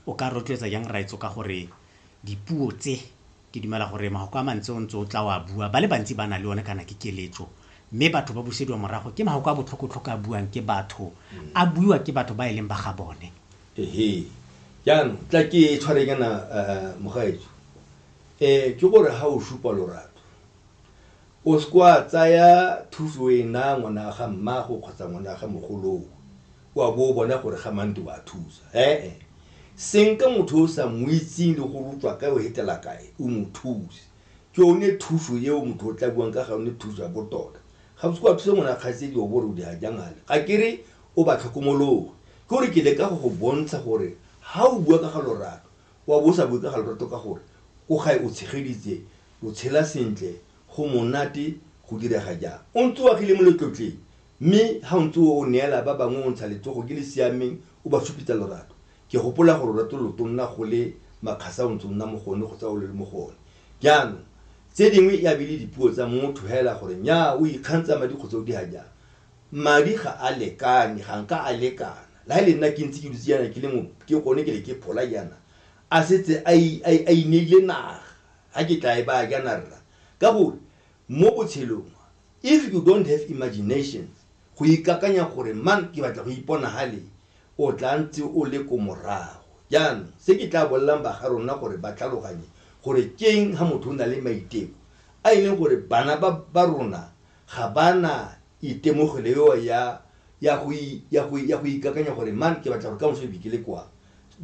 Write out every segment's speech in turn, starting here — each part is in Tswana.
O ka rotloetsa jang rraetsho ka gore dipuo tse, ke dumela gore mafoko a mantsi o ntse o tla o a bua, ba le bantsi ba na le one kana ke keletso. Mme batho ba busediwa morago ke mafoko a botlhoko-tlhoko a buang ke batho, a buiwa ke batho ba e leng ba ga bone. Ehe, jaanong tla ke tshware kana mogaetsho. Ke gore ha o supa lorato, o se ke wa tsaya thuso e naya ngwana wa ga mmago kgotsa ngwana wa ga mogoloo. wa bo o bona gore ga mante o a thusa ee senka motho o sa mo itseng le gore o tswa kae o hetela kae o mo thuse ke one thuso eo motho o tla buang ka ga one thuso ya botota ga botse kwa thuse ngwana kgaitsedi o bore o di hajangale ga ke re o ba tlhokomologe ke gore ke le ka go go bontsha gore ga o bua ka ga lorato wa bo o sa bue ka ga lorato ka gore ko gae o tshegeditse o tshela sentle go monate go direga jang o ntse o agile mo letlotleng Mme ga o ntse o neela ba bangwe o ntsha letsogo ke le siameng, o ba supetsa lorato. Ke gopola gore lorato lo tonna go le makgasa o ntse o nna mo go one kgotsa o le mo go one. Jaanong, tse dingwe e a be e le dipuo tsa motho hela gore nnyaa o ikgantsha madi kgotsa o dira jang. Madi ga a lekane, ga nka a lekana. La he le nna ke ntse ke dutse jaana ke le mo ke gone ke le ke phola jaana, a setse a a ineile naga, ga ke tla e baya jaana rra. Ka gore mo botshelong if you don't have imagination go ikakanya gore mang ke batla go ipona hale o tla ntse o le ko morago jaanong se ke tla bolelang baga rona gore ba tlhaloganye gore keng ha motho o na le maiteko a e leng gore bana ba ba rona ga ba na itemogelo eo ya ya go ya go ya go ikakanya gore man ke batla gore ka moso e bikele kwa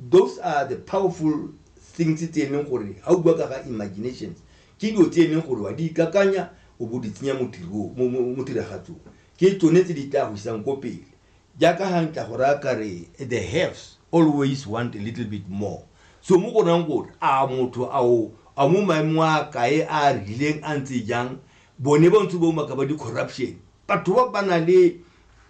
those are the powerful things tse e leng gore ga o bua ka ga imaginations Ke dilo tse e leng gore wa di ikakanya o bo di tsenya mo tirong, mo, mo, mo tiragatsong. Ke tsone tse di tla go isang ko pele. Jaaka ga ntla go raya ka re, the haves always want a little bit more. So mo go rayang gore a motho a o a mo maemong a kae a a rileng a ntse jang, bone ba ntse ba umaka ba di-corruption. Batho ba ba na le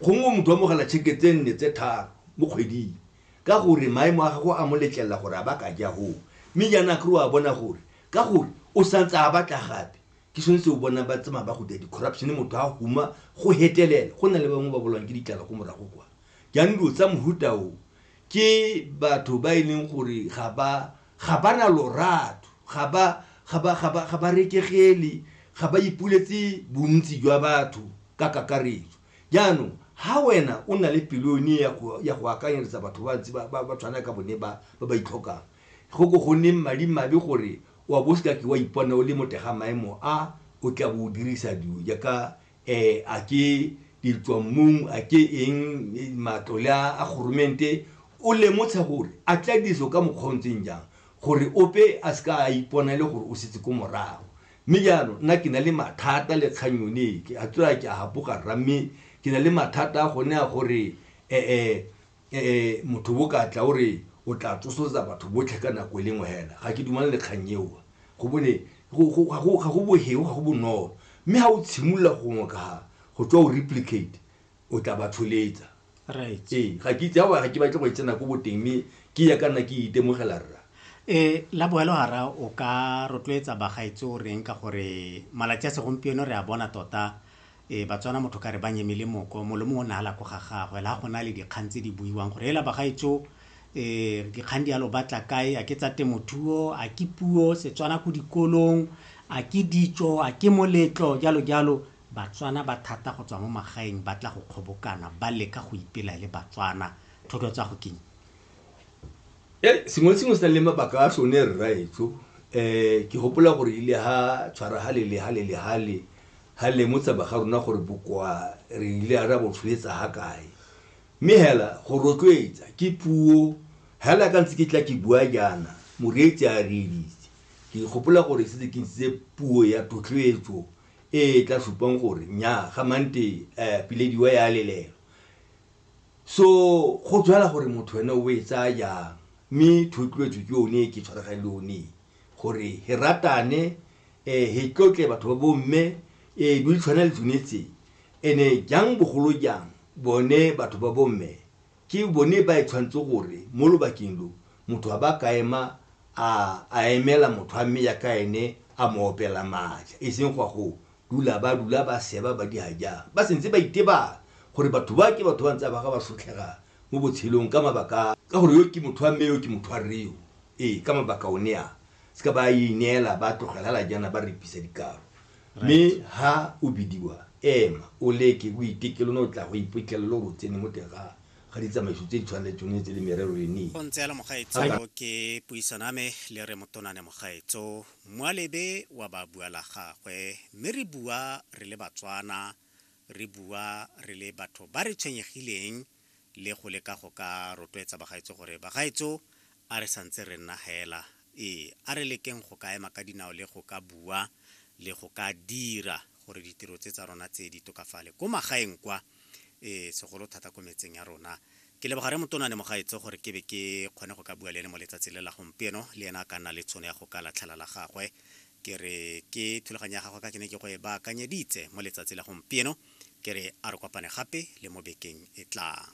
gongwe motho wa mogala tšheke tse nne tse tharo mo kgweding ka gore maemo a gago a mo letlelela gore a ba ka ja hoo. Mme jaana kry wa bona gore ka gore o santse a batla gape ke sone se o bona ba tsamaya ba go dira di-corruption motho a huma go hetelela go na le bangwe ba bolwang ke ditlala ko morago kwa jaanong dilo tsa mohuta o ke batho ba e leng gore ga ba ga ba na lorato ga ba ga ba ga ba ga ba rekegele ga ba ipuletse bontsi jwa batho ka kakaretso jaanong ha wena o na le pelone ya go ya go akanyeletsa batho ba ntse ba ba tshwana ka bone ba ba ba itlhokang Go ko go nneng madimabe gore wa bo o se ka ke wa ipona o le mo teng ga maemo a o tla bo o dirisa dilo jaaka um a ke ditswammung, a ke eng, matlole a a goromente, o lemotsha gore a tla dirisiwa ka mokgwa o o ntseng jang gore ope a se ka a ipona e le gore o setse ko morago. Mme jaanong nna ke na le mathata le kgang yone e, ke a tswa ke a gapoga rra mme ke na le mathata a gone a gore um eh motho bo ka tla o re o tla tsosoletsa batho botlhe ka nako e lengwe hela ga ke dumane le kgang eo go bone ga go boheo ga go bonolo mme ga o tshimolola go ngokaga go tswa o replicate o tla ba tsholetsa right ee ga ke itse ga ke batle go e tsena ko boteng mme ke ya ka nna ke itemogela rra e la boelo gara o ka rotloetsa bagaetsi o reng ka gore malatsi a segompieno re a bona tota Ee, Batswana motho ka re ba nyeme le moko, molomo o ne a la ko ga gagwe, la go na le dikgang tse di buiwang gore ela bagaetso ee, dikgang di alo batla kae, a ke tsa temothuo, a ke puo, Setswana ko dikolong, a ke ditso, a ke moletlo, jalo jalo. Batswana ba thata go tswa mo magaeng ba tla go kgobokana, ba leka go ipela e le Batswana. Thoto tsa go keng? E, sengwe le sengwe se na le mabaka a sone rraetsho. Um ke gopola gore ile ha tshwara hale le hale le hale, ha lemotsa ba ga rona gore bokoa re ile a ra bo tshoetsa ha kae mme hela go rotloetsa ke puo hela ka ntse ke tla ke bua jaana moreetsi a reeditse ke gopola gore setse ke ntse puo ya totloetso e e tla supang gore nya ga mante eh, pilediwa ya lelelo so go tswela gore motho wena o e tsaya jang mme thotloetso ke yone e ke tshwaragale yone gore he ratane eh, he tlotle batho ba bomme eh, di tshwana le tsone tse ene jang bogolo jang bone batho ba bomme ke bone ba e tshwanetse gore mo lobakeng lo motho a ba ka ema a emela motho a mme ya ka ene a mo opela maatla e seng gwa go dula ba dula ba seba ba di jang ba sentse ba itebang gore batho ba ke batho ba ntse ba ga ba sotlhega mo botshelong ka mabaka ka gore yo ke motho wa mme yo ke motho wa reo ee ka mabaka o ne a se ka ba ineela ba tlogelela jaana ba repisa dikaro mme ha o bidiwa ema o leke o itekelo ne o tla go iphitlhelelo gore o tsene mo teng ga ga ditsamaiso tse di tshwaneletseng o etse le merero e ne go ntse yalo mogaetso ke puisano ame le re motonane mogaetso moalebe wa ba bua la gagwe mme re bua re le batswana re bua re le batho ba re tshwenyegileng le go leka go ka rotloetsa bagaetso gore bagaetso a re santse re nna hela ee a re lekeng go ka ema ka dinao le go ka bua le go ka dira gore ditiro tse tsa rona tse di tokafale ko magaeng kwa ee segolo thata ko metseng ya rona ke leboga re motona ne mogaetso gore ke be ke kgone go ka bua le ene mo letsatsi le la gompieno le ena a ka nna le tshono ya go ka latlhela la gagwe ke re ke thulaganyo ya gagwe ka ke ne ke go e baakanyeditse mo letsatsi la gompieno ke re a re kopane gape le mo bekeng e tlang